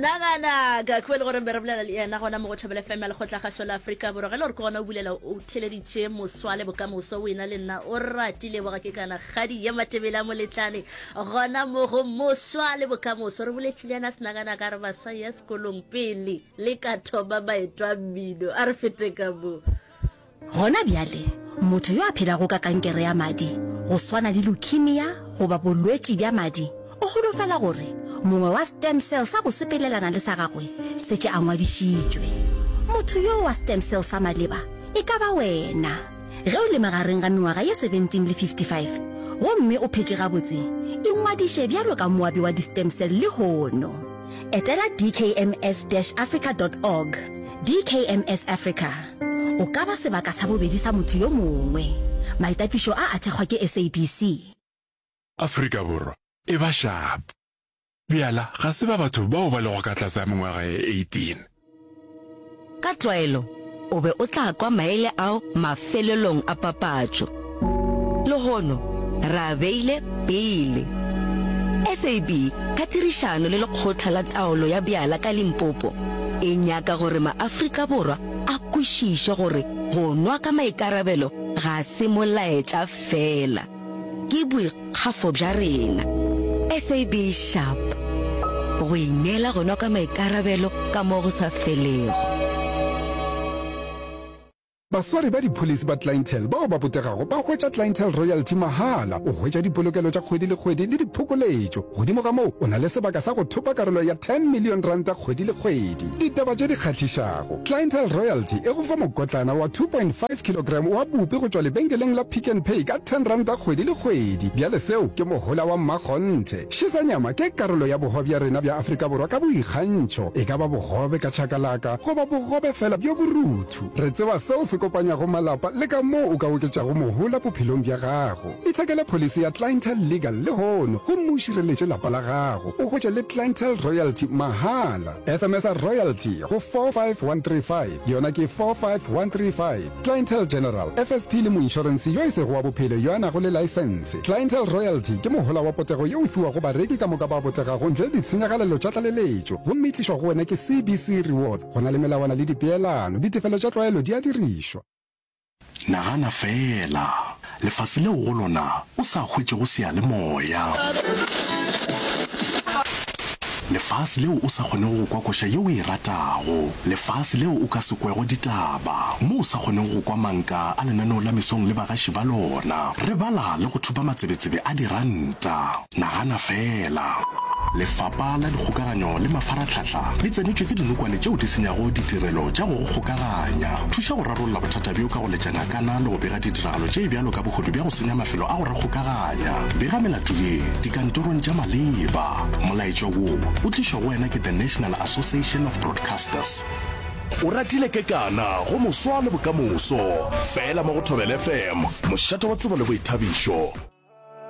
senagana ka khubele gore be re bolela le yena gona mo go thobele fm ya lekgotla kgaso la aforika borwa ge le gore ke gona o bulela o theleditše moswa le bokamoso o ena le nna o ratile boga ke kana kgadi ye matebele a moletlane gona mo go moswa le bokamoso re boletše le yena senagana ka re baswa ya sekolong pele le ka thoba baetwa mmino a re fete ka moo Gona bjale, motho yo a phelago ka kankere ya madi, go swana le leukemia goba bolwetši bja madi, o holofela gore mongwe wa stem cell sa go sepelelana le sa gagwe setše a ngwadišitšwe. Motho yoo wa stem cell sa maleba e ka ba wena. Ge o le magareng ga mengwaga ye 17 le 55 gomme o phetše gabotse, ingwadiše bjalo ka moabi wa di-stem cell lehono. Etela dkms-africa.org, DKMS Africa, o ka ba sebaka sa bobedi sa motho yo mongwe. Maitapišo a a thekgwa ke SABC. Afrika Borwa e ba shapo. Bjala ga se ba batho bao ba lego ka tlase ga mengwaga ye 18. Ka tlwaelo o be o tla kwa maele ao mafelelong a papatšo. Lehono re a beile pele. SAB ka tirišano le Lekgotla la Taolo ya Bjala ka Limpopo e nyaka gore maAfrika Borwa a kwešiše gore go nwa ka maikarabelo ga se molaetša feela. Ke boikgafo bja rena. SAB Sharp, Go ineela gona ka maikarabelo ka mo go sa felego. Baswari ba dipholisi ba Clientele bao ba botegago ba hwetša Clientele Royalty mahala, o hwetša dipolokelo tša kgwedi le kgwedi le diphokoletšo. Godimo ga moo, o na le sebaka sa go thopa karolo ya R10 million kgwedi le kgwedi. Ditaba tše di kgahlišago. Clientele Royalty e go fa mokotlana wa 2.5 kilogram wa bupi go tšwa lebenkeleng la Pick n Pay ka R10 kgwedi le kgwedi. Bjale seo ke mohola wa mmakgonthe. Šesanyama ke karolo ya bogobe bja rena bja Afrika Borwa ka boikgantšho, e ka ba bogobe ka chakalaka goba bogobe feela bjo borutho. Re tseba seo se kopanyago malapa le ka moo o ka oketšago mohola bophelong bja gago. Ithekele pholisi ya Clientele Legal lehono gomme o šireletše lapa la gago, o hwetše le Clientele Royalty mahala. SMSa royalty go 45135, yona ke 45135. Clientele General, FSP le moinšorense yo e sego wa bophelo yo a nago le laesense. Clientele royalty ke mohola wa potego yo o fiwago bareki ka moka ba botegago ntle le ditshenyagalelo tša tlaleletšo, gomme e tlišwa go wena ke CBC Rewards. Go na le melawana le dipeelano. Ditefelo tša tlwaelo di a dirišwa. Nagana feela, lefase leo go lona o sa hwetšego seyalemoya. Lefase leo o sa kgonego go kwa koša yeo o e ratago. Lefase leo o ka se kwego ditaba, mo o sa kgonego go kwa manka a lenaneo la mesong le bagaši ba lona. Re bala le go thupa matsebetsebe a diranta. Nagana feela! Lefapa la Dikgokaganyo le Mafaratlhatlha le tsenetšwe ke dinokwane tšeo di senyago ditirelo tša go go kgokaganya. Thuša go rarolla bothata bjo ka go letša ngakana le go bega ditiragalo tše bjalo ka bohodu bja go senya mafelo a go re kgokaganya. Bega melato ye dikantorong tša maleba. Molaetša wo o tlišwa go wena ke The National Association of Broadcasters. O ratile kekana go moswa le bokamoso, fela mo go Thobela FM, mošate wa tsebo le boithabišo.